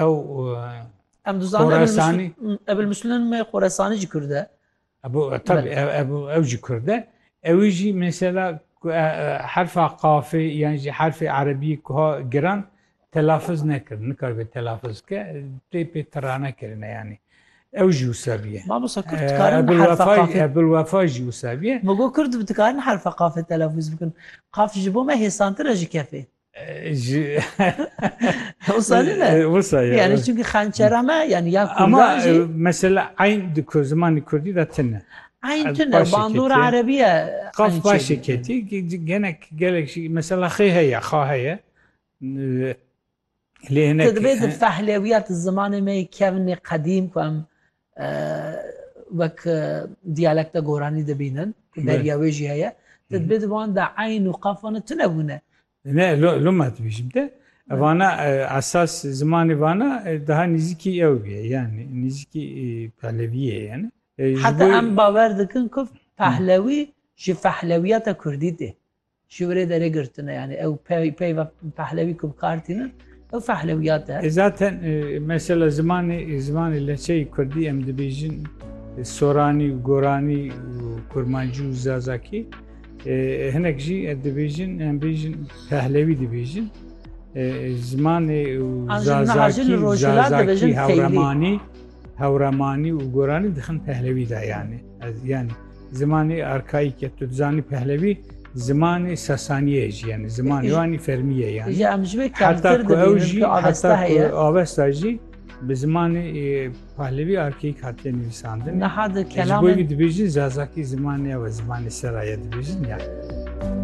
ew Em dizanin Ebil Muslin me Xoresanî jî Kurd e. Tabi ew jî Kurd e. Ewî jî mesela herfa qafê yan jî herfê erebî ku ha giran telafiz nekir. Nikaribe telafiz ke tê pê tirane kirine yanî. Ew jî wisa biye. Mamosa Kurd dikarin herfa qafê. Ebil Wefa jî wisa biye. Migo Kurd dikarin herfa qafê telafiz bikin. Qaf ji bo me hêsantir e ji kefê. Wisa ne? Wisa ya. Yani çünkü hançera me yani ya kurdan Ama e, jî mesela eyn di ku- zimanê Kurdî de tine. eyn tune başê bandora ketiye. erebiye Qaf eyn başê çêdike. ketî ge- genek gelek jî mesela xê heye, xa heye. Lê hinek Te divê di fehlewiya di zimanê me yê kevnê qedîm ku em wek diyalekta goranî dibînin ku beriya wê jî heye te dibê di wan de eyn û qafan e tune bûne Ne loma dibêjim te vana esas zimanê vana daha nîzikî ew bûye yani nîzikî peleviyê yani heta em bawer dikin ku pehlewî ji fehlewiyata kurdî tê Ji were derê girtine yanî ew peyva pehlewî ku bi kar tînin ew fehlewiyat e. Zaten mesela zimanê zimanê leçeyê Kurdî em dibêjin Soranî û Goranî û Kurmancî û Zazakî hinek jî dibêjin em bêjin pehlewî dibêjin zimanê û Zazakî Zazakî hewremanî hewremanî û Goranî dixin pehlewî de yanî. Ez yani zimanê arkaîke tu dizanî pehlevî zimanê sesaniyê jî yani zimanê wanî fermiye yani. Ji em ji wê kemtir dibînin ku avesta heye. Avesta jî bi zimanê pahlevî arkeyîk hatiye nivîsandin. Niha di kelamên... Ji bo wî dibêjin zazakî zimanê ew zimanê seraye dibêjin yani.